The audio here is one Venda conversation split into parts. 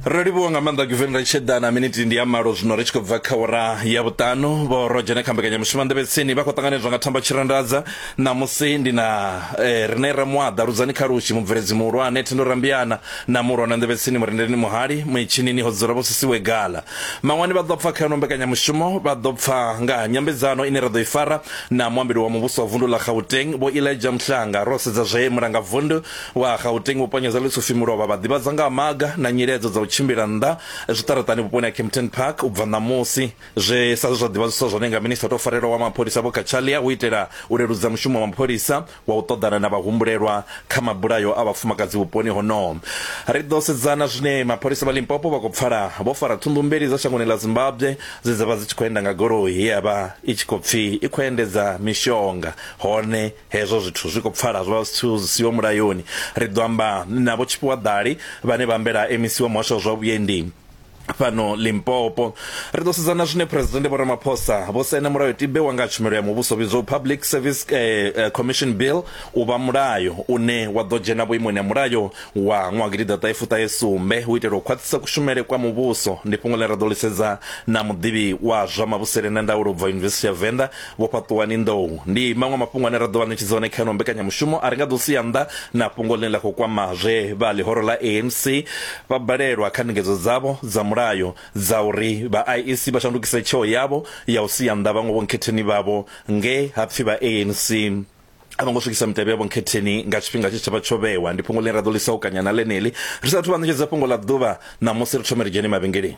ro livhuwa nga maanḓa giveni ri tshi ḓa na miniti ndi ya malo zwino ri tshi khou bva kha ura ya vhuṱanu vho ro dzhena kha mbekanyamushumo nḓevhetsini vha khou ṱanganedzwa nga thamba tshirandadza ṋamusi ndi na eh, rine ra muaḓa ludzani kha lushi mubveledzi muhulwane thendo rambiana na muhulwane nḓevhetsini murendeleni muhali muitshinini ho dzula vho sisiwe gala maṅwani vha ḓo pfa kha yono mbekanyamushumo vha ḓo pfa nga ha nyambedzano ine ra ḓo i fara na muambeli wa muvhuso wa vundu ḽa gauteng vho ilaja mhlanga ro sedza zwe mulangavundu Wa Gauteng Vho Ponyeza Lesufi Mulovha vha ḓivhadza nga ha maga na nyiledzo dza u tshimbila nnḓa zwiṱaraṱani vhuponi ha Kempton Park u bva ṋamusi, zwe sa zwe zwa ḓivhadziswa zwone nga Minisiṱa o tou Farelwaho wa Mapholisa Vho Cachalia hu itela u leludza mushumo wa mapholisa wa u ṱoḓana na vhahumbulelwa kha mabulayo a vhafumakadzi vhuponi honoho. Ri ḓo sedza na zwine mapholisa vha Limpopo vha khou pfala vho fara thundu mbili dza shangoni ḽa Zimbabwe dze dza vha dzi tshi khou enda nga goloi ye ya vha i tshi khou pfi i khou endedza mishonga hone Hezwo zwithu zwi khou pfala zwa zwithu zwi siho mulayoni. Ri ḓo amba na Vho Tshifhiwa Ḓali vhane vha ambela MEC wa Muhasho wa zwa Vhuendi fhano Limpopo. Ri ḓo sedza na zwine Phresidennde Vho Ramaphosa vho saina mulayotibe wa nga ha tshumelo ya muvhuso vhidzwaho Public Service Commission Bill u vha mulayo une wa ḓo dzhena vhuimoni ha mulayo wa ṅwaha gidiḓaṱahe fuṱahe sumbe u itela u khwaṱhisa kushumele kwa muvhuso. Ndi fhungo ḽe ra ḓo ḽi sedza na muḓivhi wa zwa mavhusele na ndaulo u bva Yunivesithi ya Venḓa Vho Fhaṱuwani Nḓou ndi maṅwe a mafhungo ane ra ḓo vha ṋetshedza one kha ino mbekanyamushumo a ri nga ḓo sia nnḓa na fhungo ḽine ḽa khou kwama zwe vha ḽihoro ḽa ANC vha balelwa kha ndingedzo dzavho dza mulayo dza uri vha IEC vha shandukise tsheo yavho ya u sia nnḓa vhaṅwe vhonkhetheni vhavho nge ha pfi vha ANC a vho ngo swikisa mitevhe ya vhonkhetheni nga tshifhinga tshe tsha vha tsho vhewa. Ndi fhungo ḽine ra ḓo ḽi saukanya na ḽeneḽi ri sa athu vha ṋetshedza fhungo ḽa ḓuvha ṋamusi, ri thome ri dzhene mavhengeleni.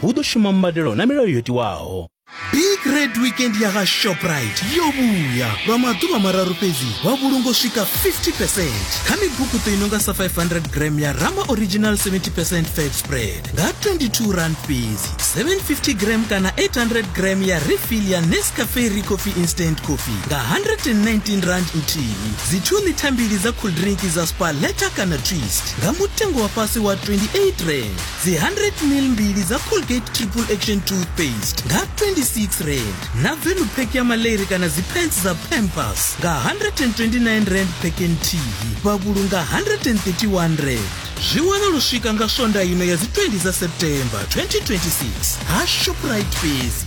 hu ḓo shuma mbadelo na milayo yo tiwaho. Big Red Weekend ya ha Shoprite yo vhuya lwa maḓuvha mararu fhedzi wa vhulunga u swika 50% kha mibukuṱo i nonga sa 500 gram ya Rama Original 70% fat spread nga 22 rand fhedzi, 750 gram kana 800 gram ya refill ya Nescafe Re Coffee Instant Coffee nga 119 rand nthihi, dzi 2 ḽitha mbili dza cool drink dza Spar Letta kana Twist nga mutengo wa fhasi wa 28 rand. dzi 100 mil mbili dza colgate triple action toothpaste nga 26 rand na velu pack ya maleri kana dzipants dza pampers nga 129 rand pack nthihi vha vhulunga 131 rand zwi wana lu swika nga swonda ino ya dzi 20 dza september 2026 ha shoprite fhedzi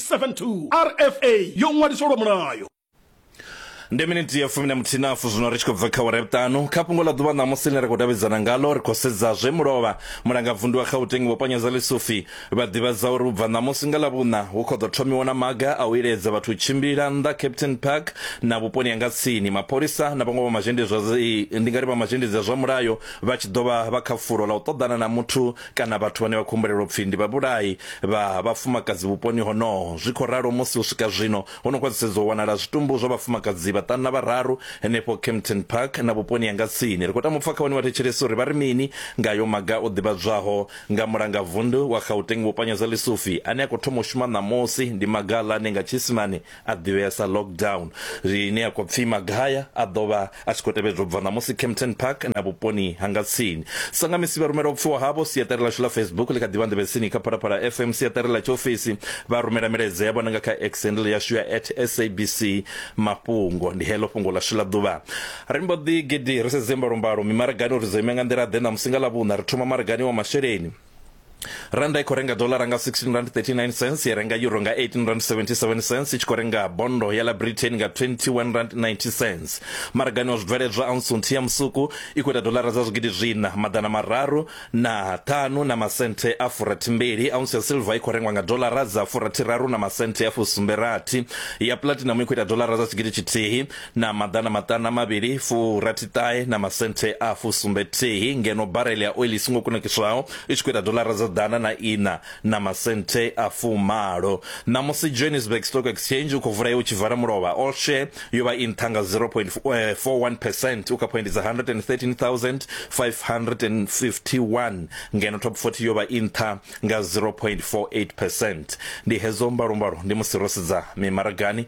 0.72 rfa yo ṅwaliswa lwa mulayo. Ndi miniti ya fumi na muthinafu zwino ri tshi khou bva kha wara ya vhuṱanu kha fhungo ḽa ḓuvha ṋamusi ḽine ra khou davhidzana ngalo ri khou sedza zwe mulovha mulanga vundu wa gauteng vho panyeza lisufi vha ḓivhadza uri ubva ṋamusi nga ḽavhuṋa hu khou ḓo thomiwa na maga a u iledza vhathu u tshimbila nnḓa captain park na vhuponi ha nga tsini mapholisa na vhaṅwe vha mazhendedzi ndi nga ri vha mazhendedzi a zwa mulayo vha tshi ḓo vha vha kha fulo ḽa u ṱoḓana na muthu kana vhathu vhane vha khou humbulelwa u pfi ndi vhabulai vha vhafumakadzi vhuponi honoho. Zwi khou ralo musi u swika zwino ho no khwaṱhisedzwa u wanala zwitumbu zwa vhafumakadzi vhaṱanu na vhararu henefho Kempton Park na vhuponi ha nga tsini. Ri khou tama u pfa kha vhane vha thetshelesa uri vha ri mini nga ayo maga o ḓivhadzwaho nga Mulangavundu wa Gauteng Vho Panyeza Lesufi ane a khou thoma u shuma ṋamusi. Ndi maga-ḽa ane nga Tshiisimane a ḓivhea sa lockdown ine ya khou pfi magaya a ḓo vha a tshi khou tevhedzwa u bva ṋamusi campton park na vhuponi ha nga tsini sangamisi vha rumela u pfiwa havho siaṱari ḽashu ḽa facebook ḽi kha ḓivha nḓevhetsini kha phalaphala fm siaṱari ḽa tshiofisi vha rumela milaedza yavho na nga kha exendle yashu ya at sabc mafhungo ndi heḽo fhungo ḽashu ḽa ḓuvha ri mbo ḓi gidi ri sedze mbalombalo mimaragani uri dzo ima nga nḓila ḓe ṋamusi nga ḽa vhuṋa ri thoma maragani wa masheleni randa i khou renga dolara nga 16 rand 39 cents ya renga euro nga 18 rand 77 cents i tshi khou renga bondo ya la britain nga 21 rand 90 cents maragani wa zwibveledzwa ounce nthihi ya musuku i khou ita dolara dza zwigidi zwina maḓana mararu na ṱhanu na masenthe a furathimbili ounce ya silver i khou rengwa nga dolara dza furathiraru na masenthe a fusumberathi ya platinum i khou ita dolara dza tshigidi tshithihi na maḓana maṱanu a mavhili furathiṱahe na masenthe a fusumbethihi ngeno barele ya oili i songo kunakiswaho i tshi khou ita dolara dza ḓana na ina na masenthe a fumalo ṋamusi johannesburg stock exchange u khou vula ye u tshi vala mulovha all share yo vha i nṱha nga 0.41 eh, percent u kha phoindi dza 113551 ngeno top 40 yo vha i nṱha nga 0.48 percent ndi hedzo mbalombalo ndi musi ro sedza mimaragani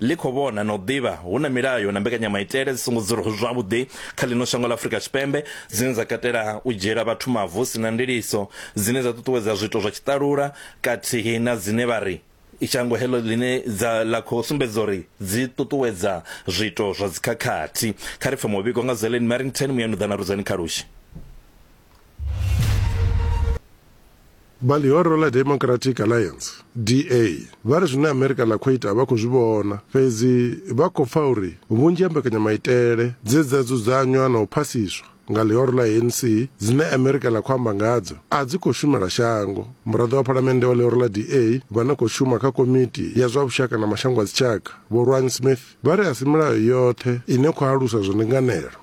ḽi khou vhona na u ḓivha hu na milayo na mbekanyamaitele dzi songo dzulaho zwavhuḓi kha ḽino shango ḽa Afrika Tshipembe dzine dza katela u dzhiela vhathu mavu hu si na ndiliso, dzine dza ṱuṱuwedza zwiito zwa tshiṱalula kathihi na dzine vha ri shango heḽo ḽine dza ḽa khou sumbedza uri dzi ṱuṱuwedza zwiito zwa dzikhakhathi. Kha ri pfe muvhigo nga Zellen Merrington, Muyanuḓana Rudzani Khalushi. vha ḽihoro ḽa democratic alliance da vha ri zwine amerika ḽa khou ita vha khou zwi vhona fhedzi vha khou pfa uri vhunzhi ha mbekanyamaitele dze dza dzudzanywa na u phasiswa nga ḽihoro ḽa anc dzine amerika ḽa khou amba ngadzo a dzi khou shumela shango muraḓo wa phalamennde wa ḽihoro ḽa da vha no khou shuma kha komiti ya zwa vhushaka na mashango a dzitshaka vho rwan smith vha ri a si milayo yoṱhe ine khou alusa zwa ndinganelo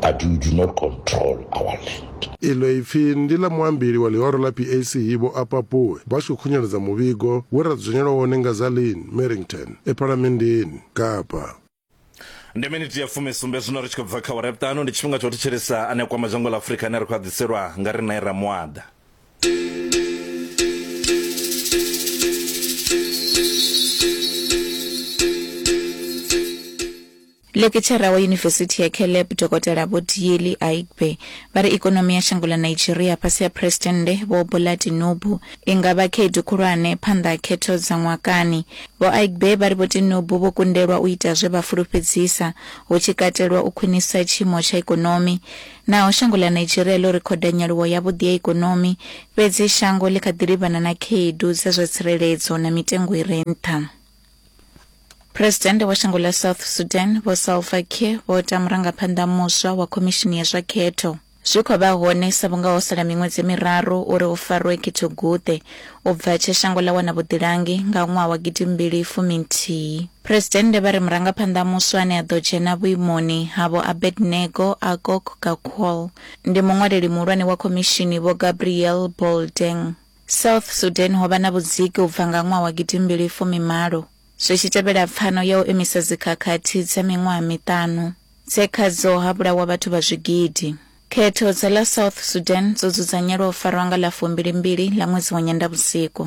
but you do not control our land. Iḽo ipfi ndi ḽa muambeli wa ḽihoro ḽa PAC Vho Appa Pooe vha tshi khou khunyeledza muvhigo we ra dzudzanyelwa wone nga Zaleen Merrington e Phalamenndeni Kapa. Ndi miniti ya fumi sumbe zwino ri tshi khou bva kha awara ya vhuṱanu. Ndi tshifhinga tsha u thetshelesa a ne a kwama dzhango ḽa Afurika ane a ri khou a ḓiselwa nga riṋe Ramuaḓa. Lekitshara wa Yunivesithi ya Caleb, Dokotela Vho Dieli Aigbe, vha ri ikonomi ya shango ḽa Nigeria fhasi ha Phresidennde Vho Bola Tinubu i nga vha khaedu khulwane phanḓa ha khetho dza ṅwakani. Vho Aigbe vha ri Vho Tinubu vho kundelwa u ita zwe vha fulufhedzisa, hu tshi katelwa u khwinisa tshiimo tsha ikonomi. Naho shango ḽa Nigeria ḽo rekhoda nyaluwo yavhuḓi ya ikonomi, fhedzi shango ḽi kha ḓi livhana na khaedu dza zwa tsireledzo na mitengo i re nṱha. Presidennde wa shango ḽa South Sudan Vho Salva Kiir vho ta murangaphanḓa muswa wa khomishini ya zwa khetho zwi khou vha hone sa vhunga ho sala miṅwedzi miraru uri hu farwe khetho-guṱe u bva tshe shango ḽa wana vhuḓilangi nga ṅwaha wa gidimbili fumi nthihi. Presidennde vha ri murangaphanḓa muswa ane a ḓo dzhena vhuimoni ha Vho Abednego Akok Gakwal ndi muṅwaleli muhulwane wa khomishini Vho Gabriel Boldeng. South Sudan ho vha na vhudziki u bva nga ṅwaha wa gidimbili fumi malo, zwi tshi tevhela pfano ya u imisa dzikhakhathi dza miṅwaha miṱanu, dze khadzo ha vhulawa vhathu vha zwigidi. Khetho dza ḽa South Sudan dzo dzudzanyelwa u farwa nga ḽa fumbili-mbili ḽa ṅwedzi wa Nyendavhusiku.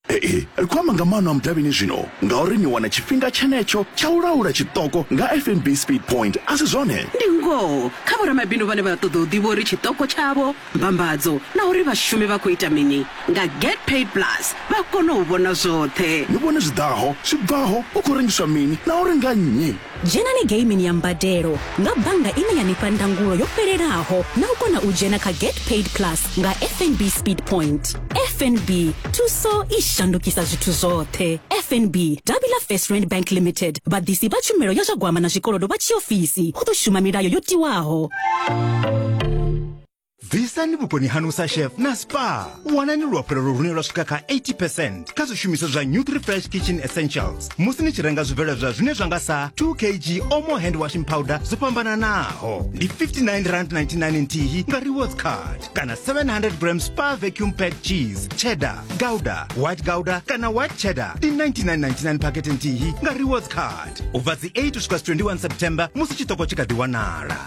Ee, ri khou amba nga maano a mudavhini zwino ngauri ni wana tshifhinga tshenetsho tsha u laula tshiṱoko nga fnb speed point a si zwone ndi ngoho kha vhoramabindu vhane vha ṱoḓa u ḓivha uri tshiṱoko tshavho mbambadzo na uri vhashumi vha khou ita mini nga get paid plus vha kona u vhona zwoṱhe ni vhone zwi ḓaho zwi bvaho hu khou rengiswa mini na uri nga nnyi Dzhenani geimini ya mbadelo nga bannga ine ya ni fha ndangulo yo fhelelaho na u kona u dzhena kha Get Paid Plus nga FNB Speed Point. FNB, thuso i shandukisa zwithu zwoṱhe. FNB, davhi ḽa First Rand Bank Limited, vhaḓisi vha tshumelo ya zwa gwama na zwikolodo vha tshiofisi, hu ḓo shuma milayo yo tiwaho. bvisani vhukoni hanu sa chef na spa wanani luafhulelo lune lwa swika kha 80 percent kha zwishumiswa zwa nutrifresh kitchen essentials musi ni tshi renga zwibveledzwa zwine zwa nga sa 2 kg omo hand washing powder zwo fhambananaho ndi 59 rand 99 nthihi nga rewards card kana 700 gram spa vacuum pack cheese cheddar gouda white gouda kana white cheddar ndi 99.99 pakete nthihi nga rewards card ubva dzi 8 usvika 21 september musi chitoko chikadiwanala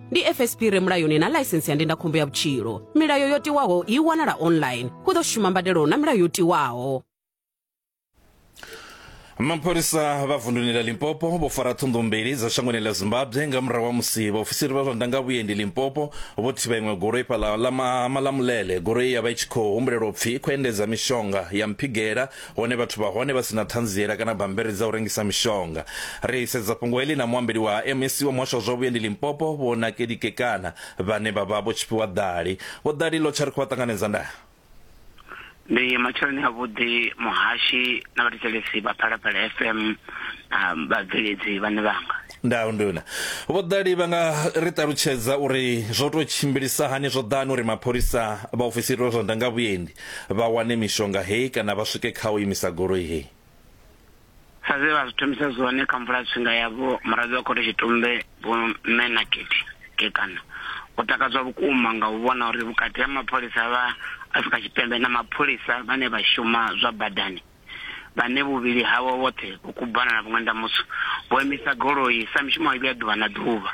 ndi fsp re mulayoni na ḽaisentsi ya ndindakhombo ya vhutshilo milayo yo tiwaho i wanala online hu ḓo shuma mbadelo na milayo yo tiwaho mapholisa vha vunduni la limpopo vho fara thundu mbili dza shangoni la zimbabwe nga murahu ha musi vhaofisiri vha zwa ndanga vhuendi limpopo vho thivha iṅwe goloi fhaḽa ḽa malamulele goloi ya vha i tshi khou humbulelwa upfi i khou endedza mishonga ya mphigela Hone vhathu vha hone vha si na ṱhanziela kana bammbiri dza u rengisa mishonga. Ri sedza fhungo heḽi na muambeli wa MEC wa muhasho wa zwa vhuendi Limpopo, Vho Nakedi Kekana, vhane vha vha Vho Tshifhiwa Ḓali. Vho Ḓali, Lotjha ri khou vha ṱanganedza nda. Ndi matsheloni avhuḓi muhashi na vhathetshelesi vha Phalaphala FM na vhabveledzi vhane vhanga. Ndau nduna. Vho Ḓali vha nga ri ṱalutshedza uri zwo tou tshimbilisa hani zwo ḓa hani uri mapholisa, vhaofisiri vha zwa ndangavhuendi Vha wane mishonga hei kana vha swike kha u imisa goloi hei. Sa zwe vha zwi thomisa zwone kha mvula-tshifhinga ya Vho Muraḓo wa Khothe Tshitumbe Vho Mme Nakethi Kekana, o takadzwa vhukuma nga u vhona uri vhukati ha mapholisa vha Afrika Tshipembe na mapholisa vhane vha shuma zwa badani, vhane vhuvhili havho vhoṱhe vho kubana na vhuṅwenda mutswu, vho imisa goloi sa mishumo mivhi ya ḓuvha na ḓuvha.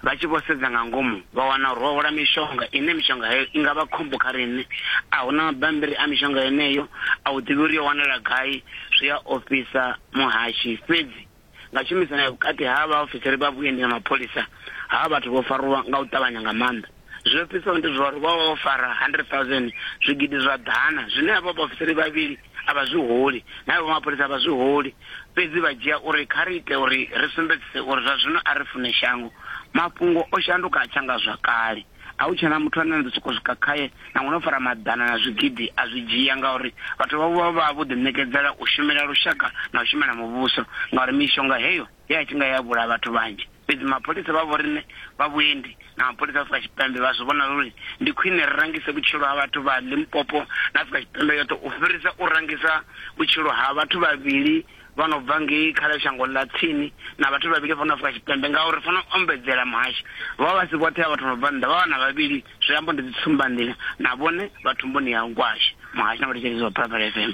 Vha tshi vho sedza nga ngomu, vha wana uri ho hwala mishonga ine mishonga heyo i nga vha khombo kha riṋe. A hu na mabammbiri a mishonga yeneyo, a u ḓivhi uri yo wanala gai, zwi a ofhisa muhashi. Fhedzi nga tshumisano ya vhukati ha vhaofisiri vha vhuendi na mapholisa, havha vhathu vho farwa nga u ṱavhanya nga maanḓa. Zwi ofhisaho ndi zwa uri vho vha vho fara 100,000, zwigidi zwa ḓana, zwine avho vhaofisiri vhavhili a vha zwi holi, na avho mapholisa a vha zwi holi, fhedzi vha dzhia uri kha ri ite uri ri sumbedzise uri zwa zwino a ri fune shango. Mafhungo o shanduka a tsha nga zwa kale. A hu tshena muthu ane na ḓo sokou swika khae na ngo no fara maḓana na zwigidi a zwi dzhia, ngauri vhathu vhavho vha vha vho ḓiṋekedzela u shumela lushaka na u shumela muvhuso, ngauri mishonga heyo he ya tshinga ya vhulaha vhathu vhanzhi. Fhedzi mapholisa vha vhoriṋe vha vhuendi na mapholisa a Afrika Tshipembe vha zwi vhona zwo ri ndi khwine ri rangise vhutshilo ha vhathu vha Limpopo na Afrika Tshipembe yoṱhe u fhirisa u rangisa vhutshilo ha vhathu vhavhili vha no bva ngei kha ḽa shango ḽa tsini na vhathu vhavhili vha no Afrika Tshipembe ngauri ri fanela u ombedzela muhasho. Vho vha vha si vhoṱhe ha vhathu vha no bva nnḓa, vha vhana vhavhili, zwi amba ndi dzitsumbandila na vhone vha thumbuni ya Gwashe, muhasho na vhathetshelesi vha Phalaphala FM.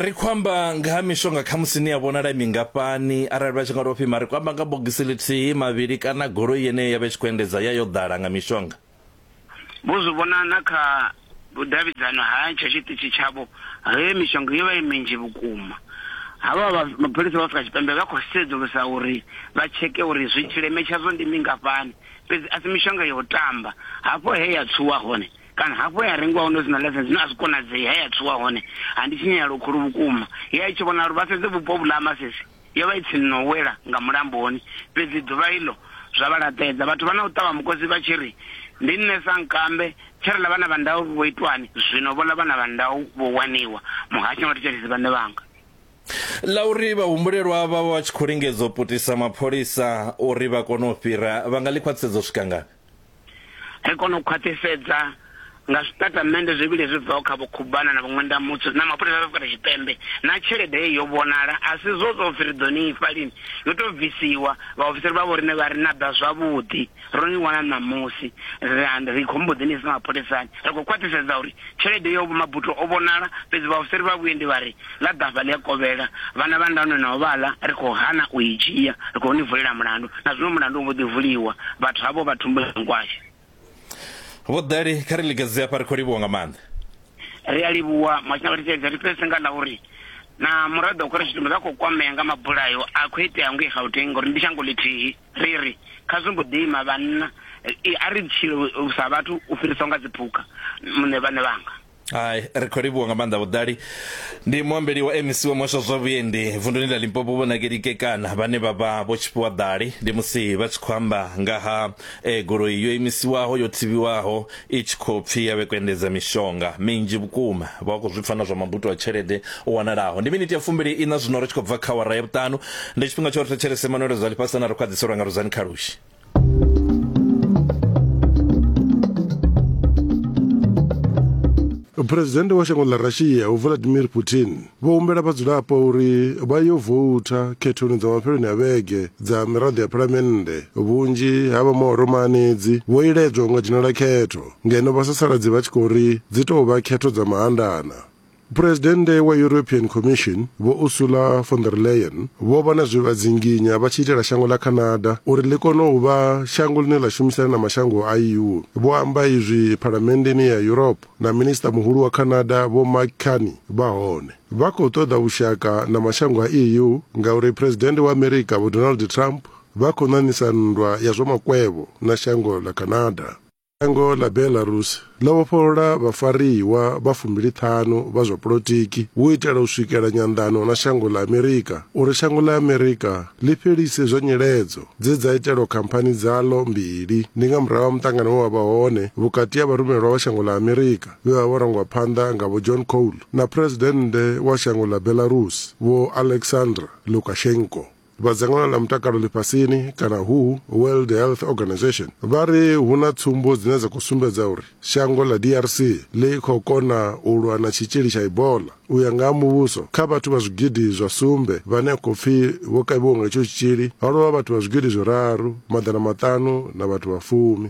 Ri khou amba nga ha mishonga khamusi ni a vhonala i mingafhani arali vha tshi nga tou pfhi mara ri khou amba nga bogisi ḽithihi, mavhili kana goloi yeneyo ya vha i tshi khou endedza ya yo ḓala nga mishonga? vho zwi vhona na kha vhudavhidzano ha tsha tshiṱitshi tshavho he mishonga yo vha i minzhi vhukuma havha mapholisa vha afrika tshipembe vha khou sedzulusa uri vha tsheke uri zwi tshileme tshadzo ndi mingafhani fhedzi a si mishonga ya u tamba hafho he ya tshuwa hone kana hafho ya rengiwa hone zwi na lesson zwine a zwi konadzei he ya tshuwa hone ha ndi tshinyalelo khulu vhukuma ye a i tshi vhona uri vha sedze vhupo vhu ḽa masisi Yo vha i tsini na u wela nga mulamboni, fhedzi ḓuvha iḽo zwa vha laṱedza. Vhathu vha na u ṱavha mukosi vha tshi ri, Ndi nṋe sankambe, tshe ri ḽa vhana vha ndau vho itwani? Zwino vho ḽa vhana vha ndau vho waniwa, muhasho nga thetshelesi vhaṋe vhanga. Ḽa uri vhahumbulelwa vha vha vha tshi khou lingedza u putisa mapholisa uri vha kone u fhira, vha nga ḽi khwaṱhisedza u swika ngafhi? ri kona u khwaṱhisedza nga zwitatamennde zwivhili zwi bvaho kha vhukhubana na vhuṅwendamutsu na mapholisa a Afrika Tshipembe na tshelede ye yo vhonala a si zwo zwo pfi ri ḓo ni ifha lini yo tou bvisiwa vhaofisiri vha vho riṋe vha ri na ḓa zwavhuḓi ro ni wana ṋamusi ri khou mbo ḓi ni isa mapholisani ri khou khwaṱhisedza uri tshelede yo mabuto o vhonala fhedzi vhaofisiri vha vhuendi vha ri Ḽa ḓafha ḽi a kovhela, vhana vha nda nwe navho vha ḽa, ri khou hana u i dzhia, ri khou ni vulela mulandu. Na zwino mulandu u mbo ḓi vuliwa, vhathu havho vha thumbu ya nkwashe. Vho Dali, kha ri lingedze hafha, ri khou livhuwa nga maanḓa. Ri a livhuwa, Mhashu na Vhathetshelesi. Ri fhedzise nga ḽa uri na muraḓo wa Khore Tshitumbe vha khou kwamea nga mabulayo a khou itea ngei Gauteng ngauri ndi shango ḽithihi. Ri ri, Kha zwi mbo ḓi ima vhanna, a ri tshile sa vhathu u fhirisa u nga dziphukha, muṋe vhaṋe vhanga. hai ri khou livhuwa nga maanḓa vhuḓali ndi muambeli wa mec wa muhasho wa zwa vhuendi vunduni ḽa limpopo vho nakeli kekana vhane vha vha vho tshifhiwa ḓali ndi musi vha tshi khou amba nga ha eh, goloi yo imisiwaho yo thivhiwaho i tshi khou pfi ya vhekwa endedza mishonga minzhi vhukuma vha khou zwi pfa na zwa mabuto a tshelede o wanalaho ndi miniti ya fumbili ina zwino ri tshi khou bva kha wara ya vhuṱanu ndi tshifhinga tsho ri thetshelese manuelo zwa ḽifhasana ri khwaḓiselwa nga ruzani khalushi phuresidennde wa shango ḽa russia uvladimir putin vho humbela vhadzulapo uri vha yo voutha khethoni dza mafheloni a vhege dza miraḓo ya phalamennde vhunzhi ha vha maoromaanedzi vho iledzwa unga dzhenela khetho ngeno vhasasaladzi vha tshi khou ri dzi tou vha khetho dza mahandana Phuresidennde wa European Commission Vho Ursula von der Leyen vho vha na zwe vha dzinginya vha tshi itela shango ḽa Canada uri ḽi kone u vha shango ḽine ḽa shumisana na mashango a EU. Vho amba izwi Phalamenndeni ya Europe na Minisiṱa Muhulu wa Canada Vho Mark Carney vha hone. Vha khou ṱoḓa vhushaka na mashango a EU ngauri Phuresidennde wa Amerika Vho Donald Trump vha khou ṋaṋisa nndwa ya zwa makwevho na shango ḽa Canada. Shango ḽa Belarus ḽo vhofholola vhafariwa vha fumbili-ṱhanu vha zwa polotiki u itela u swikela nyanḓano na shango ḽa Amerika uri shango ḽa Amerika ḽi fhelise zwa nyiledzo dze dza itelwa khamphani dzaḽo mbili ndi nga murahu ha muṱangano we wa vha hone vhukati ha vharumelwa vha shango ḽa Amerika vhe vha vho rangwa phanḓa nga Vho John Cole na Phresidennde wa shango ḽa Belarus Vho Alexander Lukashenko. vha dzangano ḽa mutakalo ḽifhasini kana who world health organization vha ri hu na tsumbo dzine dza khou sumbedza uri shango ḽa drc ḽi khou kona u lwa na tshitzhili tsha ibola u ya nga ha muvhuso kha vhathu vha zwigidi zwa sumbe vhane a khou pfi vho kavhiwa nga itsho tshitzhili ha lovha vhathu vha zwigidi zwiraru maḓana maṱanu na vhathu vha fumi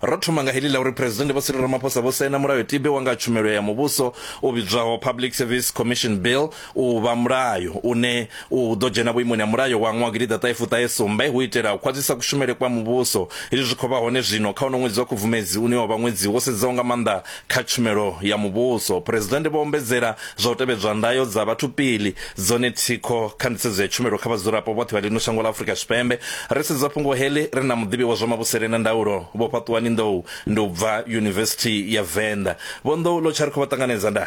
Ro thoma nga heḽi ḽa uri Phresidennde Vho Cyril Ramaphosa vho saina mulayotibe wa nga ha tshumelo ya muvhuso u vhidzwaho Public Service Commission Bill u vha mulayo une u ḓo dzhena vhuimoni ha mulayo wa nwaha gidi ḓa ṱahe fuṱahe sumbe hu itela u khwaṱhisa kushumele kwa muvhuso. Hezwi zwi khou vha hone zwino kha uno ṅwedzi wa Khubvumedzi une wa vha ṅwedzi wo sedzaho nga maanḓa Kha tshumelo ya muvhuso, Phresidennde vho ombedzela zwa u tevhedzwa ndayo dza vhathu pili dzone thikho kha nḓisedzo ya tshumelo kha vhadzulapo vhoṱhe vha ḽino shango ḽa Afrika Tshipembe. Ri sedza fhungo heḽi ri na muḓivhi wa zwa mavhusele na ndaulo Vho Fhaṱuwani Nḓou ndi u bva Yunivesithi ya Venḓa. Vho Nḓou, ḽo tsha ri khou vha ṱanganedza nda.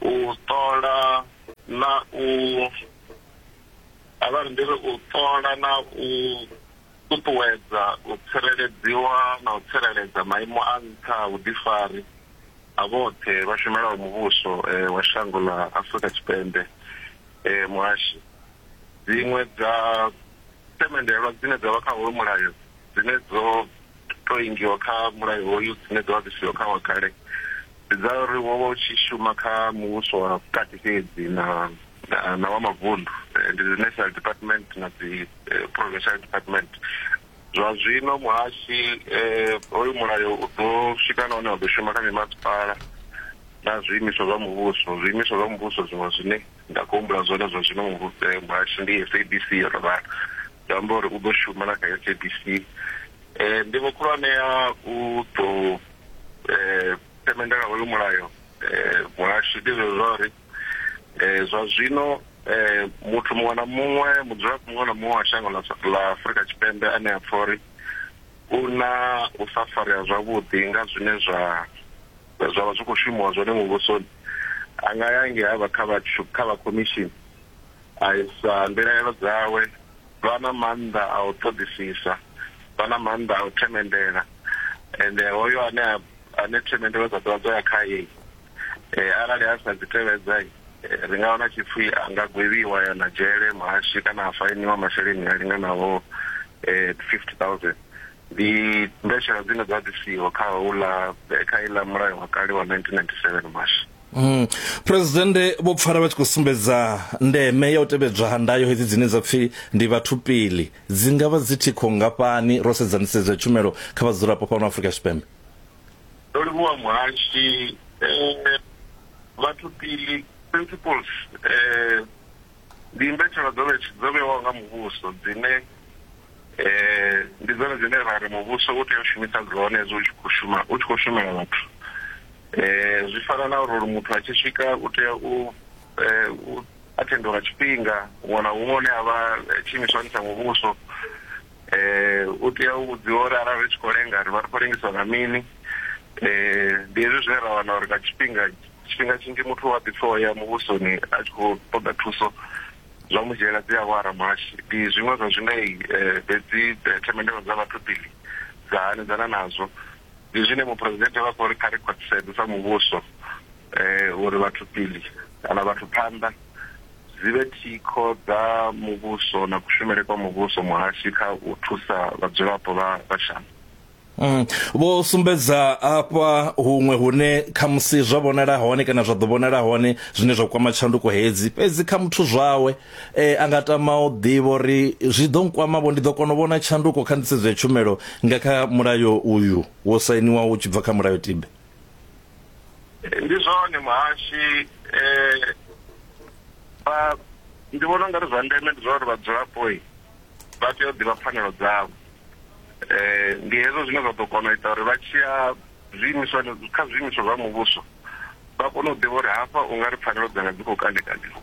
u ṱola na u avha ri ndi ri u ṱola na u ṱuṱuwedza u tsireledziwa na u tsireledza maimo a nṱha a vhuḓifari a vhoṱhe vha shumelaho muvhuso eh, wa shango ḽa Afrika Tshipembe eh, muhashi dziṅwe dza themendelwa dzine dza vha kha hoyu mulayo dzine dzo to ingiwa kha mulayo hoyu dzine dza vha dzi siho kha wa kale Ndi dza uri wo vha u tshi shuma kha muvhuso wa vhukati fhedzi na na wa mavundu, ndi dzi National Department na dzi Provincial Department. Zwa zwino muhashi hoyu mulayo u ḓo swika na hune wa ḓo shuma kha mimasipala na zwiimiswa zwa muvhuso, zwiimiswa zwa muvhuso zwiṅwe zwine nda kho humbula zwone zwa zwino muhashi ndi SABC yo no vhala, zwi amba uri u ḓo shuma na kha SABC. Nḓivho khulwane ya u ḓo. eh themendela hoyu mulayo eh muhasho ndi zwa uri eh zwa zwino eh muthu muṅwe na muṅwe mudzulapo muṅwe na muṅwe wa shango ḽa ḽa Afrika Tshipembe ane a pfha uri u na u sa farea zwavhuḓi nga zwine zwa zwa vha zwi khou shumiwa zwone muvhusoni a nga ya ngei havha kha vha kha vha commission a isa mbilaelo dzawe Vha na maanḓa a u ṱoḓisisa, vha na maanḓa a u themendela, ende hoyo ane a, ane themendelo dza dovha dza ya khae, arali a sa dzi tevhedza, ri nga wana tshi pfi a nga gwevhiwa, a ya na dzhele, muhaswi, kana a fainiwa masheleni a linganaho fifty thousand. Ndi mbetshelwa dzine dza ḓisiwa kha houḽa, kha heiḽa mulayo wa kale wa nineteen ninety seven, muhaswi. Mm. Presidente vho pfala vha tshi khou sumbedza ndeme ya u tevhedzwa ha ndayo hedzi dzine dza pfi ndi vhathu pili dzi nga vha dzi thikho ngafhani ro sedza nisedzo tshumelo kha vhadzulapo fhano Afrika Tshipembe. Ndo livhuwa muhashi eh, vhathu pili principles eh ndi mbetshelwa dzo vhewaho nga muvhuso dzine Eh, ndi dzone dzine ra ri muvhuso u tea u shumisa dzone hezwi u tshi khou shuma u tshi khou shumela vhathu eh, zwi fana na uri muthu a tshi swika u tea u eh, u athenda lwa tshifhinga huṅwe na huṅwe hune a vha eh, tshiimiswani tsha muvhuso eh, u tea u vhudziwa uri arali ri tshi khou lenga ri vha ri khou lengiswa nga mini eh, ndi hezwi zwine ra wana uri nga tshifhinga tshifhinga tshinzhi muthu wa ḓipfa o ya muvhusoni a tshi khou ṱoḓa thuso zwa mu dzhiela dziawara muhashi. Ndi zwiṅwe zwa zwine hedzi themendelo dza vhathu mbili dza hanedzana nazwo. Ndi zwine Muphuresidennde vha khou ri kha ri khwaṱhisedze sa muvhuso uri vhathu mbili kana vhathu phanḓa dzi vhe thikho dza muvhuso na kushumele kwa muvhuso muhashi kha u thusa vhadzulapo vha shango. Mm. Vho sumbedza afha huṅwe hune khamusi zwa vhonala hone kana zwa ḓo vhonala hone zwine zwa kwama tshanduko hedzi fhedzi kha muthu zwawe eh, a nga tama u ḓivha uri zwi ḓo nkwamavho ndi ḓo kona u vhona tshanduko kha nḓisedzo ya tshumelo nga kha mulayo uyu wo sainiwa u tshi bva kha mulayo tibe ndi zwone muhashi eh, ndi vhona ungari zwa ndeme ndi zwa uri vhadzulapo vha tea u ḓivha pfanelo dzavho um ndi hezwo zwine zwa ḓo kona u ita uri vha tshiya zwiimiswa kha zwiimiswa zwa muvhuso vha kone u ḓivha uri hafha u nga ri pfanelo dzanga dzi khou kandekandiwa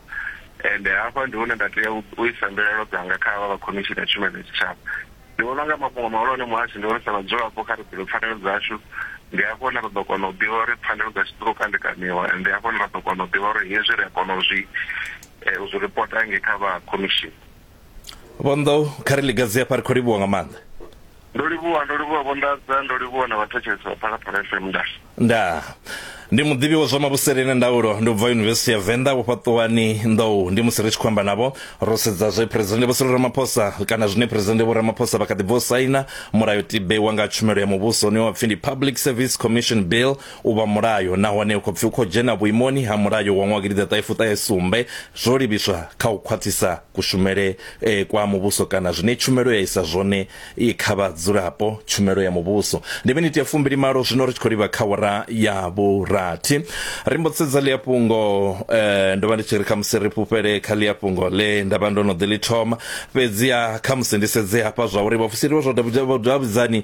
ende hafha ndi hune nda tea u isa mbilaelo dzanga kha vha vha khomishini ya tshumelo ya tshitshavha ndi vhona nga mafhungo mahulwane muhasho ndi vhona sa vhadzulapo kha ri ḓivhe pfanelo dzashu ndi hafho hune ra ḓo kona u ḓivha uri pfanelo dzashu dzi khou kandekaniwa ende hafho hune ra ḓo kona u ḓivha uri hezwi ri a kona u zwi eh, u zwi ripota nge kha vha khomishini vho nḓou kha ri ligadzi hafha ri khou livhuwa nga maanḓa ndo livhuwa ndo livhuwa vho nḓadza ndo livhuwa na vhathetshelesi vha phalaphala fm nda nda ndi muḓivhi wa zwa mavhusele na ndaulo ndi ubva yunivesithi ya venḓa vhofhaṱuwani nḓou ndi musi ri tshi khou amba navho ro sedza zwe phresidennde vho sirilo ramaphosa kana zwine phresidennde vho ramaphosa vha kha ḓi bvo saina mulayotibe wa nga tshumelo ya muvhuso une wa pfi ndi public service commission bill u vha mulayo nahone u khou pfi u khou dzhena vhuimoni ha mulayo wa ṅwaha gidiḓaṱahefuṱahe sumbe zwo livhiswa kha u khwaṱhisa kushumele eh, kwa muvhuso kana zwine tshumelo ya isa zwone eh, kha vhadzulapo tshumelo ya muvhuso ndi miniti ya fumbili malo zwino ri tshi khou livha kha wara ya vhurathi ri mbo sedza ḽi afhungo eh, ndo vha ndi tshi ri kha musi ri fhufhele kha ḽi afhungo ḽe nda vha ndo no ḓi ḽi thoma fhedziha kha musi ndi sedze hafha zwa uri vhafusiri vha zwa davhidzani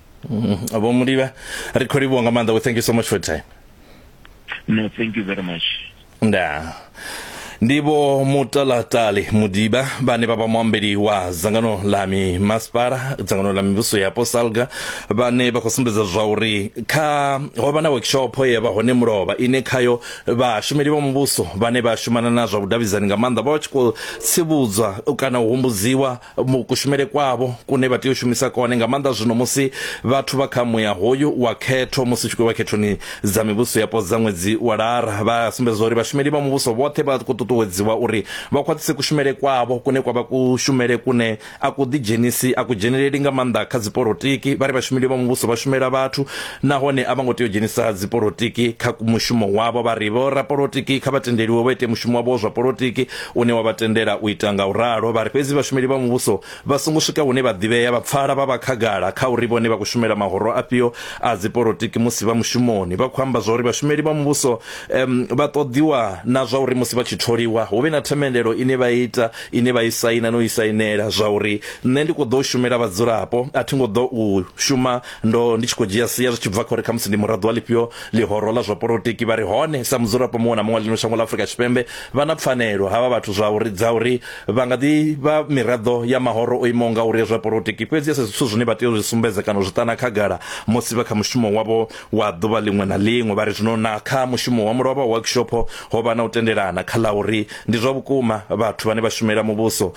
Mm, vho mulivha ri khou livhuwa nga maanḓa we thank you so much for time no thank you very much nda ndivo mutalatali mudiba vhane vha vha muambeli wa dzangano ḽa mimasipala dzangano ḽa mivhuso yapo salga vhane vha khou sumbedza zwa uri kha ho vha na workshop ye vha hone mulovha ine khayo vhashumeli vha muvhuso vhane vha shumana na zwa vhudavhidzani nga maanḓa vha vha tshi khou tsivhudzwa kana u humbudziwa kushumele kwavho kune vha tea u shumisa kone nga maanḓa zwino musi vhathu vha kha muya hoyu wa khetho musi tshi khou vha khethoni dza mivhuso yapo dza ṅwedzi wa lara vha sumbedza uri vhashumeli vha muvhuso vhoṱhe vha khou ṱuṱuwedziwa uri vha khwaṱhise kushumele kwavho kune kwa vha kushumele kune a ku ḓidzhenisi a ku dzheneleli nga maanḓa kha dzipolitiki vha ri vhashumeli vha muvhuso vha shumela vhathu nahone a vha ngo tea u dzhenisa dzipolitiki kha mushumo wavho vha ri vho rapolitiki kha vha tendeliwe vha ite mushumo wavho zwa politiki une wa vha tendela u ita nga u ralo. Vha ri fhedzi vhashumeli vha muvhuso vha songo swika hune vha ḓivhea vha pfala vha vha khagala kha uri vhone vha khou shumela mahoro afhio a dzipolotiki musi vha mushumoni. Vha khou amba zwa uri vhashumeli vha muvhuso um vha ṱoḓiwa na zwa uri musi vha tshi tholiwa hu vhe na themendelo ine vha ita ine vha i saina no i sainela zwa uri nṋe ndi khou ḓo shumela vhadzulapo a thi ngo ḓo u shuma ndo ndi tshi khou dzhia sia zwi tshi bva kha uri khamusi ndi muraḓo wa ḽifhio ḽihoro ḽa zwa polotiki. Vha ri hone sa mudzulapo muṅwe na muṅwe ḽino shango ḽa Afrika Tshipembe Vha na pfanelo havha vhathu zwa uri dza uri vha nga ḓi vha miraḓo ya mahoro o imaho ngauri ya zwa polotiki, fhedzi a si zwithu zwine vha tea u zwi sumbedza kana u zwi ṱana khagala musi vha kha mushumo wavho wa ḓuvha ḽiṅwe na ḽiṅwe. Vha ri zwino na kha mushumo wa mulovha wa workshop ho vha na u tendelana kha ḽa uri ndi zwa vhukuma vhathu vhane vha shumela muvhuso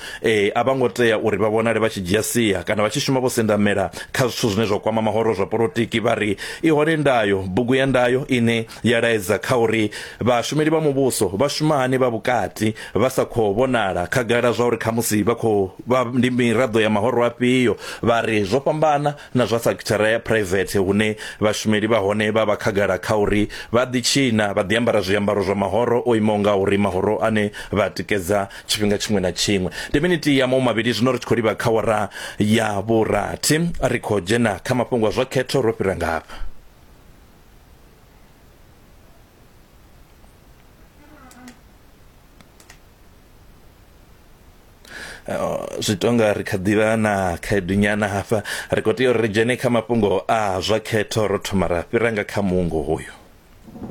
a vha ngo tea uri vha vhonale vha tshi dzhia sia kana vha tshi shuma vho sendamela kha zwithu zwine zwa kwama mahoro zwa polotiki. Vha ri i hone ndayo, bugu ya ndayo ine ya laedza kha uri vhashumeli vha muvhuso vha shuma hani vha vhukati vha sa khou vhonala khagala zwa uri khamusi vha khou vha ndi miraḓo ya mahoro afhio vha ri zwo fhambana na zwa sekithara ya phuraivethe hune vhashumeli vha hone vha vha khagala kha uri vha ḓitshina vha ḓiambara zwiambaro zwa mahoro o imaho nga uri mahoro ane vha tikedza tshifhinga tshiṅwe na tshiṅwe ndi miniti ya maumavhili zwino ri tshi khou livha kha wara ya vhurathi ri khou dzhena kha mafhungo a zwa khetho ro fhira ngafha Oh, zwi tonga ri kha ḓivha na khaedu nyana hafha ri khou tea uri ri dzhene kha mafhungo a zwa khetho ro thoma ra fhira nga kha muungo hoyo